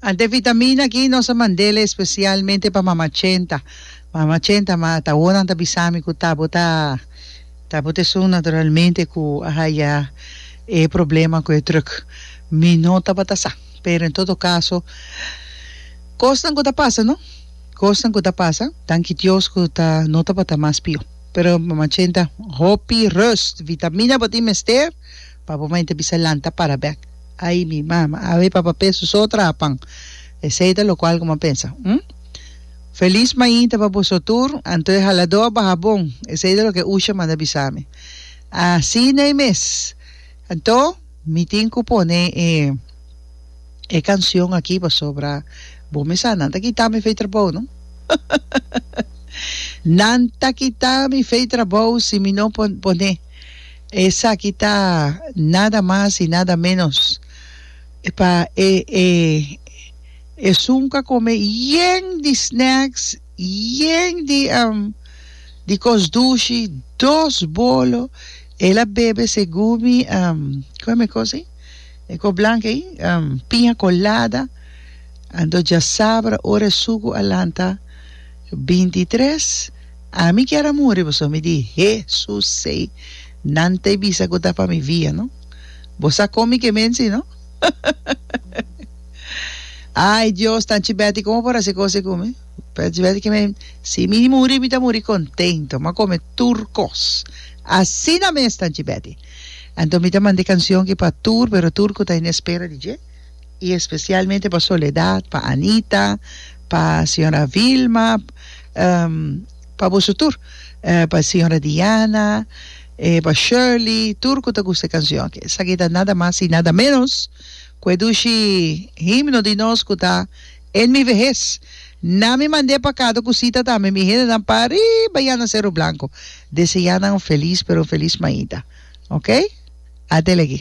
Ante vitamina aki nos a mand'el especialmente pa mama Chenta. Mama Chenta, ma ta awor nan ta bisami cu ta bo ta ta bo ta esun naturalmente cu a haya e problema cu e druk. Mi no tabata sa, pero en todo caso cosnan cu ta pasa no, cosnan cu ta pasa. Danki Dios cu ta no tabata mas pior. Pero mama Chenta hopi rust, vitamina bo tin mester. Papa mai ta bisa, Lanta para bek. Ai mi mama, awe papa pe su so traha pan. Esei ta lokual ku m'a pensa. Hm? Felis mai ta pa boso tur, anto e haladó a baha bon. Esei ta loke Usha manda bisa mi. Asin'ei mes. Anto, mi tin ku pone e e kanshon aki pasobra bo mi sa nan ta kita mi fei trabou, no? Nan ta kita mi fei trabou si mi no pone. Esaki ta nada mas y nada menos pa e e esun ka come yen di snacks, yen di am di cos dushi, dos bolo, el a bebe se gumi am com e cos ey e cos blanca ey am piña colada, anto djasabra ora e suku a lanta binti tres. Ami kier a muri pasobra mi di, Hesus sei nan ta e bisa ku ta pa mi via no. Bo sa kon mi ke mensi no. Ai Dios, Tanchi Betty komo por hasi kos ei ku mi? Tanchi Betty ke mi, si mi muri mi ta muri kontento, mi a kome tur kos. Asina mes Tanchi Betty. Anto mi ta manda e kansion ki pa tur, pero tur ku ta inespera di dje. y especialmente pa Soledad, pa Anita, pa señora Vilma, pa boso tur, pa señora Diana, pa Shirley, tur cu ta gusta e cancion aki. Esaki ta nada mas y nada menos cu e dushi himno di nos cu ta En mi vejez na mi mand'é pacado cu sita tambe mi hendenan pa riba ya na Cerro Blanco deseanan un feliz pero un feliz maida. Ok. Adele aki.